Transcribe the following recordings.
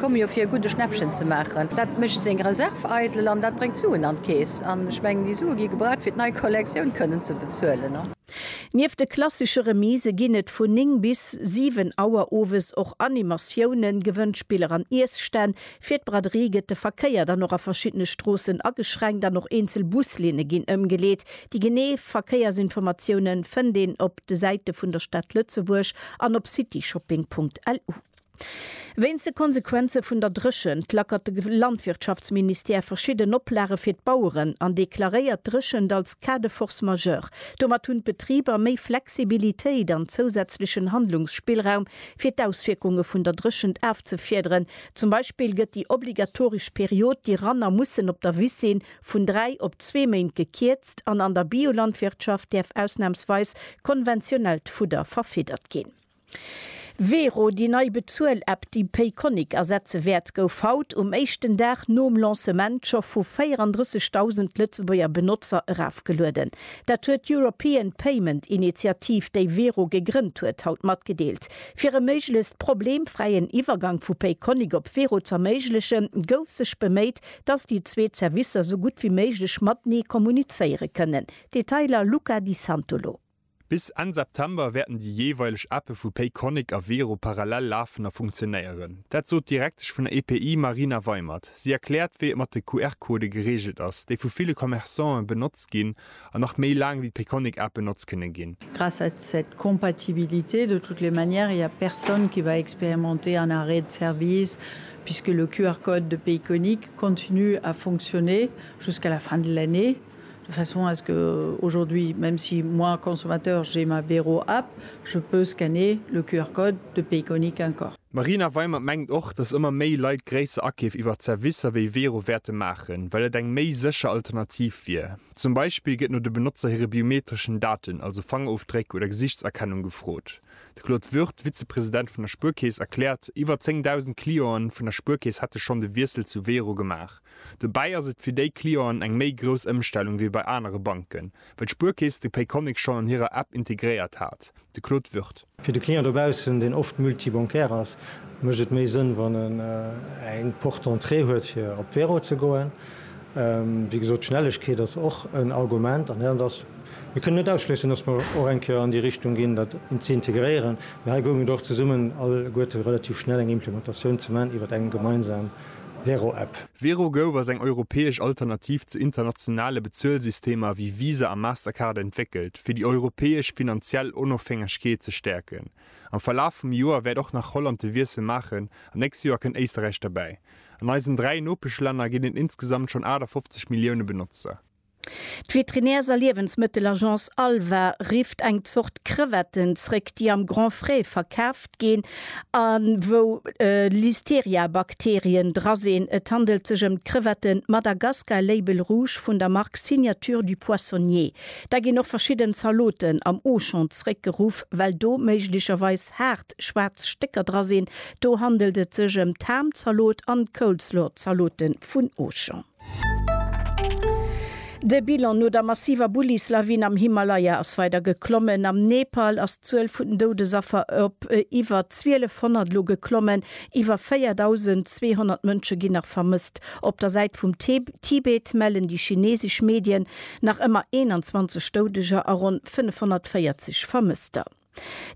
Komme jo fir e gudde Schnäppchen ze maachen. Dat mécht seng Reserv eidel an dat bréngt Suen an d'Keess. An ech mengen, déi Sue gi gebraucht, fir d'nei Kollektioun kënnen ze bezuelen. Nieft de klassesche Remise ginn et vun 9 bis 7 Auer owes och Animatiounen, Gewënnspiller an Iesstänn. Fir d'Braderie gëtt de Verkéier dann och a verschiddene Stroossen ageschränkt an och eenzel Buslinne ginn ëmgeleet. Déi genee Verkéiersinformatiounen fënnt een op de Säite vun der Stad Lëtzebuerg an op cityshopping.lu. Wéinst de Konsequenze vun der Dréchent lackert de Landwirtschaftsministère verschidden Oplage fir d'Baueren an deklaréiert d'Dréchent als Cas de force majeure. Domat hunn d'Betriber méi Flexibilitéit an zousätzlechen Handlungsspillraum, fir d'Auswierkunge vun der Dréchent afzefiederen. Zum Beispill gëtt déi obligatoresch Period, déi Ranner mussen op der Wiss sinn, vun dräi op zwee Méint gekierzt an an der Biolandwirtschaft däerf ausnamsweis konventionellt Fudder verfiddert ginn. Vero, déi nei Bezuel-App, déi Payconiq ersetze wäert, gouf haut, um éischten Dag nom Lancement, scho vu 34.000 Lëtzebuerger Benotzer erafgelueden. Dat huet d'European Payment Initiative, déi Vero gegrënnt huet, haut matgedeelt. Fir e méiglechst problemfräien Iwwergank vu Payconiq op Vero z'erméiglechen, gouf sech beméit, dass déi zwee Zerwisser sou gutt wéi méiglech matenee kommunizéiere kënnen. Detailer, Luca Di Santolo. Bis Enn September wäerten déi jeeweileg Appe vu Payconiq a Wero parallel lafen a funktionéieren. Dat sot d'Direktesch vun der EPI Marina Weimert. Si erkläert, wéi et mat de QR-Codë gereegelt ass, déi vu ville Commerçanten benotzt ginn an nach méi laang ewéi d'Payconiq-App benotzt kënne ginn. Grâce à cette compatibilité, de toutes les manières, il n'y a personne qui va expérimenter un arrêt de service puisque le QR-Code de Payconiq continue à fonctionner jusqu'à la fin de l'année. de façon à ce que aujourd'hui, même si moi consommateur j'ai ma Wero App, je peux scanner le QR code de Payconiq encore. D'Marina Weimer mengt och, datt ëmmer méi Leit gréisser Akeef iwwert Servicer wéi Wero wäerte maachen, well et eng méi sécher Alternativ wier. Zum Beispill gëtt no de Benotzer hire biometreschen Daten, also Fangerofdréck oder Gesichtserkennung, gefrot. De Claude Würth, Vizepresident vun der Spuerkeess, erkläert, iwwer 10.000 Clienten vun der Spuerkeess hätte schonn de Wiessel zu Wero gemaach. Dobäi ass et fir déi Clienten eng méi grouss Ëmstellung wéi bei anere Banken, well d'Spuerkeess de Payconiq schonn an hirer App integréiert hat. De Claude Würth. Fir de Client dobaussen, deen oft multibancaire ass, mécht et méi Sënn, wann en eng Porte d'entrée huet, fir op Wero ze goen. Wéi gesot, d'Schnellegkeet ass och en Argument. An dat ass, mir kënnen net ausschléissen, dass mer och eng Kéier an déi Richtung ginn, dat ze integréieren. Mee hei goung et och zesummen alleguerte relativ schnell eng Implementatioun ze maachen iwwer eng gemeinsam. Wero App. WeroGo ass eng europäesch Alternativ zu internationale Bezuelsystemer wéi Visa a Mastercard entwéckelt, fir déi europäesch finanziell Onofhängegkeet ze stäerken. Am Verlaf vum Joer wäert och nach Holland de Wiessel maachen an d'nächst Joer kënnt Éisterräich derbäi. An eisen dräi Nopeschlänner ginn et insgesamt schonn 58 Millioune Benotzer. D'Veterinärs a Liewensmëttelagence Alva rifft eng Zort Crevetten zréck, déi am Grand Frais verkaaft ginn a wou Listeria-Bakterien dra sinn. Et handelt sech ëm d'Crevette Madagascar Label Rouge vun der Mark Signature du Poissonnier. Da ginn och verschidden Zaloten am Auchan zréckgeruff, well do méiglecherweis haart schwaarz Stécker dra sinn. Do handelt et sech ëm d'Ham-Zalot an d'Coleslaw-Zalote vun Auchan. De Bilan no der massiver Bullislawin am Himalaya ass weider geklommen. Am Nepal ass d'Zuel vun den Doudesaffer op iwwer 1.200 elo geklommen. Iwwer 4.200 Mënsche ginn nach vermësst. Op der Säit vum Tibet mellen déi chinesesch Medien nach ëmmer 21 Doudeger a ronn 540 Vermësster.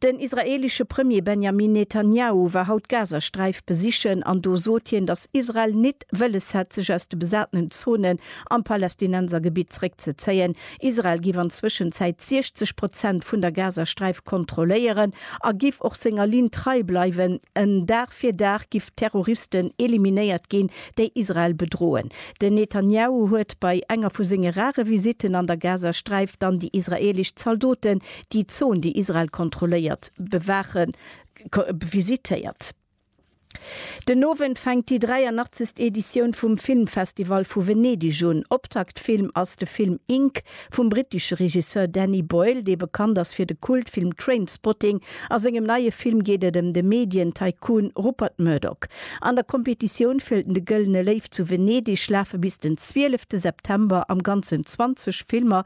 Den israeelesche Premier Benjamin Netanjahu war haut d'Gazasträif besichen an do sot hien, datt Israel nit wëlles hätt sech aus de besatenen Zonen am Palästinensergebitt zréckzezéien. Israel giff an Zwëschenzäit 60 Prozent vun der Gazasträif kontrolléieren a giff och senger Linn trei bleiwen, en Dag fir Dag giff d'Terroristen eliminéiert ginn, déi Israel bedroen. Den Netanjahu huet bei enger vu senge rare Visitten an der Gazasträif dann déi israeelesch Zaldoten déi Zon, déi Israel kontrolléiert, bewaachen, visitéiert. Den Owend fänkt déi 83. Editioun vum Filmfestival vu Venedeg un. Optaktfilm ass de Film Ink vum brittesche Regisseur Danny Boyle, dee bekannt ass fir de Kultfilm Trainspotting. A sengem neie Film geet et ëm de Medien-Tycoon Rupert Murdoch. An der Kompetitioun fir de Gëllene Léiw zu Venedeg lafe bis den 12 September am Ganzen 20 Filmer,